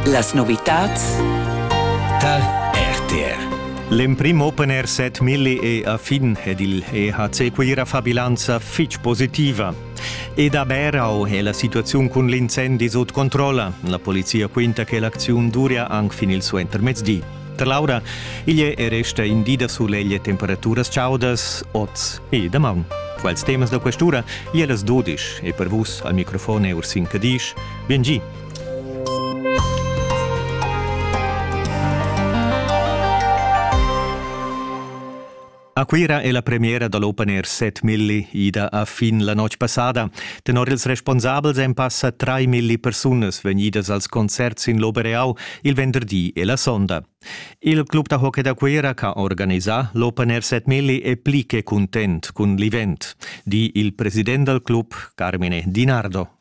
Las novitads tar RTR. L'emprim Open Air set Milli è a fin ed il EHC Cuira fa bilanza fitg positiva. Ed a Berau è la situaziun cun l'incendi sut controlla. La polizia quinta che l'acziun duria anc fin il suentermezdi. Da Laura, igl è resta in di da sulegl e temperaturas chaudas oz e damaun. Quels temas da questura, gli las dodisch e per vus al microfon è Ursin Cadisch. Bien gi! A Cuira è la premiera da l'Open Air set milli ida a fin la notg passada. Tenor ils responsabels èn passa trai milli persunas vegnidas als concerts sin l'Obereau il venderdi e la sonda. Il club da hockey da Cuira che ha organisà l'Open Air set milli è pli che cuntent cun l'event, di il president dal club, Carmine Dinardo,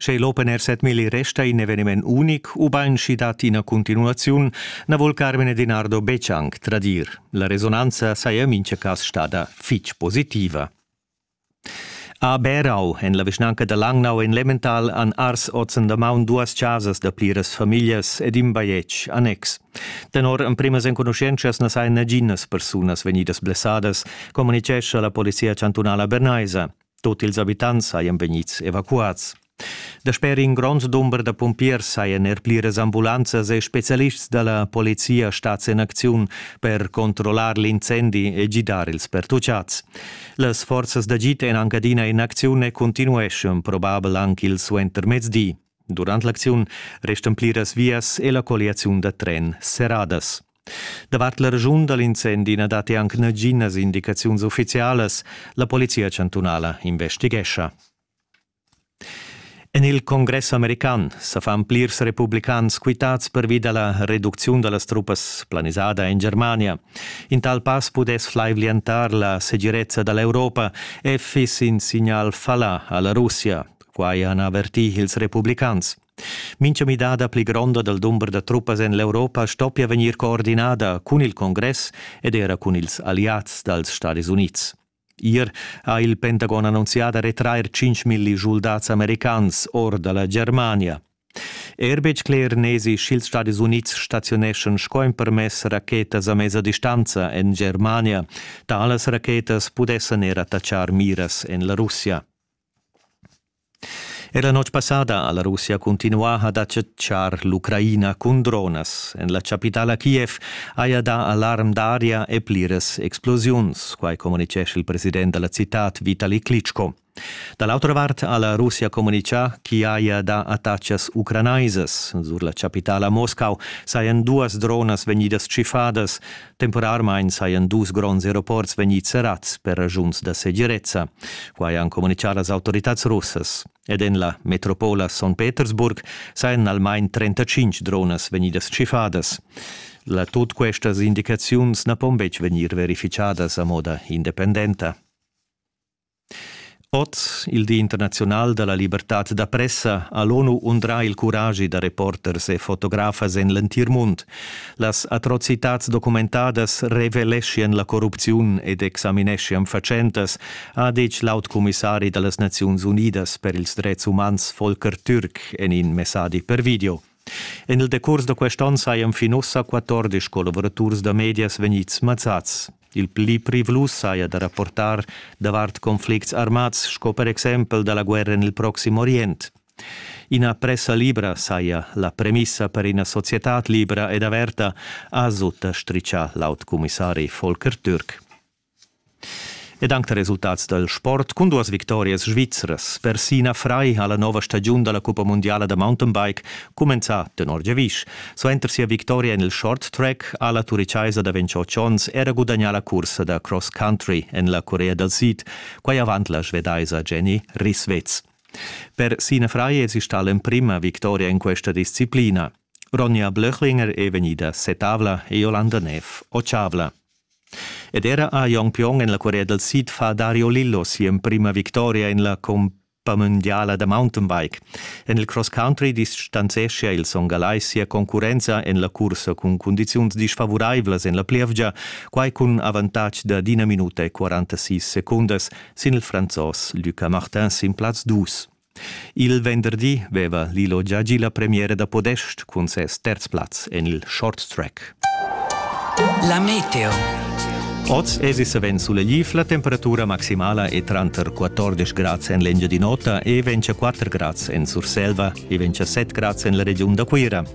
Sche l'Open Air 7000 resta in eveniment unic ubain sch'i dat ina continuaziun, na vul Carmine Dinardo betg anc tradir. La resonanza saja en mintga cas stada fitg positiva. A Berau, en la vischnanca da Langnau en Lemmental, han ars ozen damaun duas chasas da pliras famiglias ed in bajetg annex. Tenor emprimas enconuschientschas na sajan naginas persunas vegnidas blessadas, communitgescha la polizia chantunala bernaisa. Tut ils abitants sajan vegnids evacuads. Dasper in grond dumber da pumpiers sajan er pliras ambulanzas e spezialists da la polizia stads en acziun per controllar l'incendi e gidar ils pertutgads. Las forzas d'agid èn anc adina en acziun e continueschan probabel anc il suentermezdi. Durant l'acziun restan pliras vias e la colliaziun da tren serradas. Davart la regiun da l'incendi na datti anc naginas indicaziuns uffizialas. La polizia chantunala investighescha. En il Congress american sa fan plirs republicans quitads pervi da la reducziun da las truppas planisada en Germania. In tal pass pudess flaivlientar la segirezza da l'Europa e fiss in signal fallà a la Russia. Quai han avertì ils republicans. Mincha midada pli gronda dal dumber da truppas en l'Europa stoppia vegnir coordinada cun il Congress ed era cun ils alliads dals Stadis Unids. Ier ha il Pentagon annunzià da retrair 5.000 schuldats americans or da la Germania. Er betg cler n'esi sch'ils Stadis Unids staziuneschan sco empermess rachetas a mesa distanza en Germania. Talas rachetas pudessan er attaccar miras en la Russia. Er la notg passada ha la Russia cuntinuà ad acceptar l'Ucraina cun dronas. En la chapitala Kiev haja dà alarm d'aria e pliras explosiuns, quai communitgescha il president da la citad Vitali Klitschko. Da l'autra vart ha la Russia communitgà ch'i haja dà attacas ucranaisas. Sur la chapitala Moscau sajan duas dronas vegnidas tschiffadas. Temporarmain sajan dus gronds aeroports vegnids serrads per raschuns da segirezza. Quai han communitgà las autoritads russas. Ed en la metropola Son Petersburg sajan almain 35 dronas vegnidas tschiffadas. La tut questas indicaziuns na pon betg vegnir verifichadas a moda independenta. Oz, il Di internaziunal da la libertad da pressa, ha l'ONU undrà il curagi da reporters e fotografas en l'entir mund. Las atrocitads documentadas reveleschian la corrupziun ed examineschian fatschentas, ha ditg l'autcumissari da las Naziuns Unidas per ils dretgs umans Volker Türk en in messadi per video. En il decurs da quest onn sajan fin ussa 14 collavuraturs da medias vegnids mazzads. Il pli privlus saja da rapportar davart conflicts armads sco per exempel da la guerra en il Proxim Orient. Ina pressa libra saja la premissa per ina societad libra ed averta, ha sutta stritgà l'aut commissari Volker Türk. Ed anc da resultats dal sport cun duas victorias svizras. Persina Frei ha la nova stagiun da la cuppa mundiala da mountainbike cumenzà tenor giavisch. Suenter sia victoria en il short track ha la turichaisa da 28 onns era gudagnà la cursa da cross country en la Corea dal Sid, quai avant la svedaisa Jenny Risswitz. Per Sina Frei èsi stà l'emprima victoria en questa disciplina. Ronja Blöchlinger è vegnida setavla e Jolanda Neff otschavla. Ed era ha Jon Pion en la curia dal sid fa Dario Lillo si'emprima victoria en la cuppa mundiala da mountainbike. En il cross country distanzeschia il Son Galai sia concurrenza en la cursa cun cundiziuns disfavuraivlas en la plievgia, quai cun avantatg da d'ina minuta e 46 secundas sin il Franzos Luca Martin sin plaz dus. Il venderdi veva Lilo gia gì la premiera da podest cun ses terz plaz en il short track. La meteo. Oz èsi savens sulegliv, la temperatura maximala è tranter 14 grads en l'Engiadin'Ota e 24 grads en Surselva e 27 grads en la regiun da Cuira.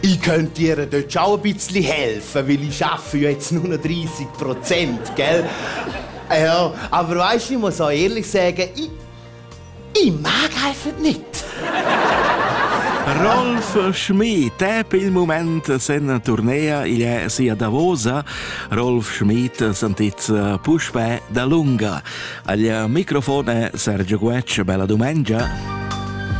Ich könnte dir dort schon ein bisschen helfen, weil ich arbeite jetzt nur noch 30 Prozent, gell? Ja, aber weißt du, ich muss auch ehrlich sagen, ich, ich mag einfach nicht. Rolf Schmid, EP il momento sen tournea il sia Davosa. Rolf Schmid sentizza puspè da lunga. Al microfon è Sergio Guecci, bella domenica.